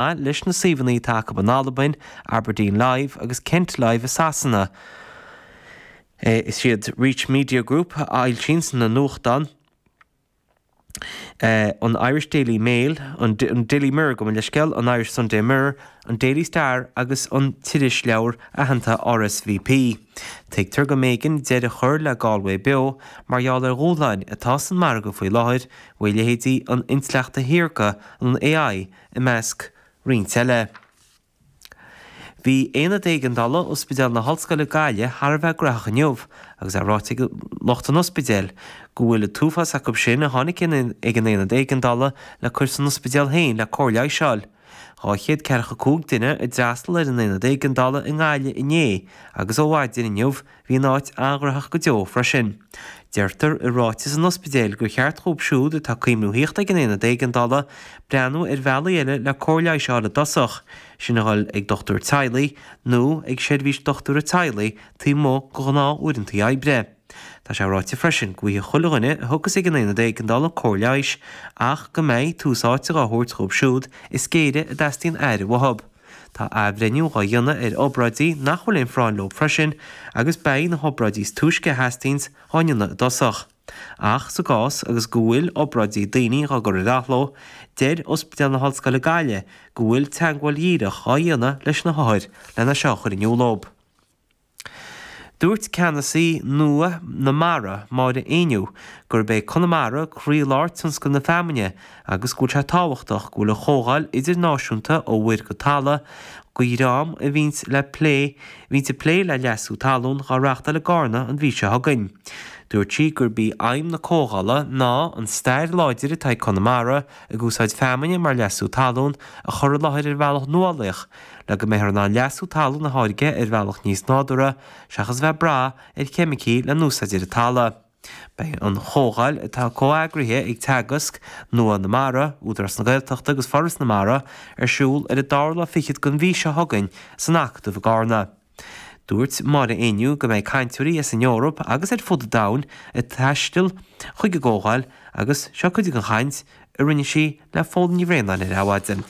maith leis na suíomhanna atá acu in Albain, Aberdeen Live agus Kent Live i Sasana. Is iad Reach Media Group a fhoilsíonns na nuachtáin, an Irish Daily Mail, an Daily Mirror dob é an scéal, an Irish Sunday Mirror, an Daily Star agus an t-irisleabhar aitheanta RSVP. Tuigtear go mb'éigean deireadh a chur le Galway Beo mar gheall ar dhúshláin atá san margadh faoi láthair, bhuel leithéidí an intleacht shaorga, an AI, i measc roinnt eile. Bhí Aonad Éigeandála Ospidéal na hOllscoile Gaillimh thar a bheith gnaitheach inniu agus é ráite ag lucht an ospidéil go bhfuil an t-uafás acu sin a tháinig ag an Aonad Éigeandála le cur san ospidéal féin le cóir leighis a fháil. Dhá chéad ceathracha cúig duine a d'fhreastal ar an Aonad Éigeandála i nGaillimh inné agus ó mhaidin inniu Bhí an áit an-ghnaitheach go deo freisin. Deirtear i ráiteas an ospidéil gur cheart dhóibh siúd atá ag cuimhniú a thíocht ag an Aonad Éigeandála breathnú ar bhealaí eile le cóir leighis a fháil i dtosach, sin a dhul ag dochtúir teaghlaigh nó ag seirbhís dochtúra teaghlaigh taobh amuigh de ghnáth-uaireantaí oibre. Tá sé ráite freisin go bhfaighidh chuile dhuine a thiocfas ag an Aonad Éigeandála cóir leighis ach go mbeidh tús áite dhá thabhairt dhóibh siúd is géire a dteastaíonn aire uathub. Tá athbhreithniú dhá dhéanamh ar obráidí nach bhfuil aon phráinn leo freisin agus beidh na hobráidí is túisce a theastaíonns dhá ndéanamh i dtosach. Ach sa gcás agus go bhfuil obráidí daoine dhá gcur ar athló, deir Ospidéal na hOllscoile Gaillimh go bhfuil teagmháil dhíreach dhá dhéanamh leis na hothair lena seo a chur in iúl dóibh. Dúirt Ceannasaí Nua na Mara, Máire Ní Éinniú, gurb é Conamara croílár tionscal na feamainne agus go bhfuil sé tábhachtach go bhfuil an Chomhdháil Idirnáisiúnta ó Mhuir go Talamh go Díorum a bhíonn le plé bhíonn ag plé le leasú talún dhá reáchtáil i gCarna an mhí seo chugainn. Dúirt sí gurb í aidhm na Comhdhála ná an stair láidir atá ag Conamara ag úsáid feamainne mar leasú talún a chur i láthair ar bhealach nuálaíoch, le go mbeifear in ann leasú talún a tháirgeadh ar bhealach níos nádúrtha seachas a bheith ag brath ar cheimicigh le n-úsáid ar an talamh. Beidh an chomhdháil, atá comheagraithe ag Teagasc, Nua na Mara, Údarás na Gaeltachta agus Foras na Mara, ar siúl ar an dara lá fichead den mhí seo chugainn san Acadamh i gCarna. Dúirt Máire Ní Éinniú go mbeidh cainteoirí as an Eoraip agus ar fud an domhain ag taisteal chuig an gcomhdháil agus seo cuid den chaint a rinne sí le Pól Ní Bhraonáin ar Adhmhaidin.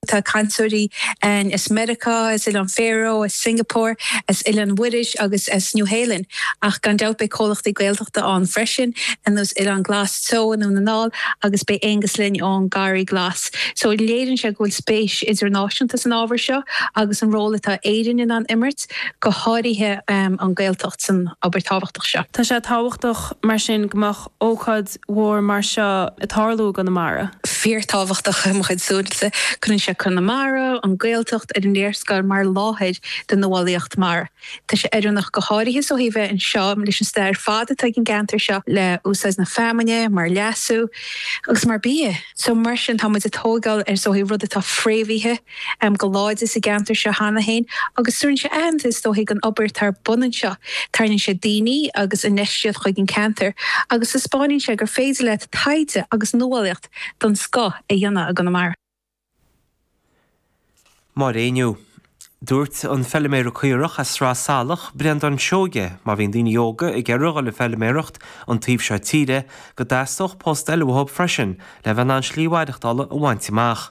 Tá cainteoirí ann as Meiriceá, as Oileán Faro, as Singapore, as Oileán Mhuiris agus as Nua-Shéalainn, ach gan dabht beidh comhlachtaí Gaeltachta ann freisin, ar nós Oileán Glas Teo i nDún na nGall, agus beidh Aonghus linn ón Garraí Glas. So léiríonn sé go bhfuil spéis idirnáisiúnta san ábhar seo agus an ról atá Éirinn in ann imirt, go háirithe an Gaeltacht, san obair tábhachtach seo. Tá sé tábhachtach mar sin go mbeadh ócáid mhór mar seo ag tarlú i gConamara. fíorthábhachtach i mo chuid súilse. Cuireann sé Conamara, an Ghaeltacht, ar an léarscáil mar láthair do nuálaíocht mara. Tá sé oiriúnach go háirithe ó thaobh bheith anseo leis an stair ar fad atá ag an gceantar seo le úsáid na feamainne mar leasú agus mar bia. So mar sin tá muid ag tóigeáil is dóigh ar rud atá fréamhaithe, am go láidir sa gceantar seo cheana féin agus tugann sé aitheantas, is dóigh, don obair atá ar bun anseo. Tarraingíonn sé daoine agus infheistíocht chuig an ceantar agus taispeáineann sé gur féidir leat taighde agus nuálaíocht den scoth a dhéanamh i gConamara. Maidin inniu, dúirt an feiliméara caorach as Sraith Salach, Breandán Seoige, má bhíonn daoine óga ag iarraidh a dhul ag feiliméaracht an taobh seo tíre, go dteastódh post eile uathu freisin le bheith in ann slí mhaireachtála a bhaint amach.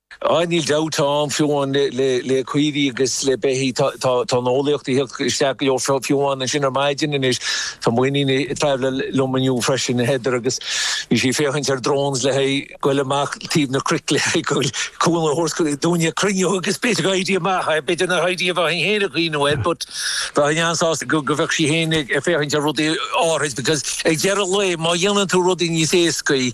Ah, níl dabht ann, fiú amháin le caoirigh agus le beithígh, tá an eolaíocht ag theacht isteach go leor, fiú amháin ansin ar maidin anois, tá m'iníon ag traibhleáil liom inniu freisin, Heather, agus bhí sí ag féachaint ar drones le haghaidh goil amach taobh na cnoic le haghaidh cúnamh a thabhairt dúinn ag cruinniú agus b'fhéidir go n-oibreoidh sé amach, b'fhéidir nach n-oibreoidh, a bheith féin ag coinneáil air but bheinn an-sásta go bheadh sí féin ag féachaint ar rudaí áithrid because ag deireadh lae, má dhéanann tú rudaí níos éascaí,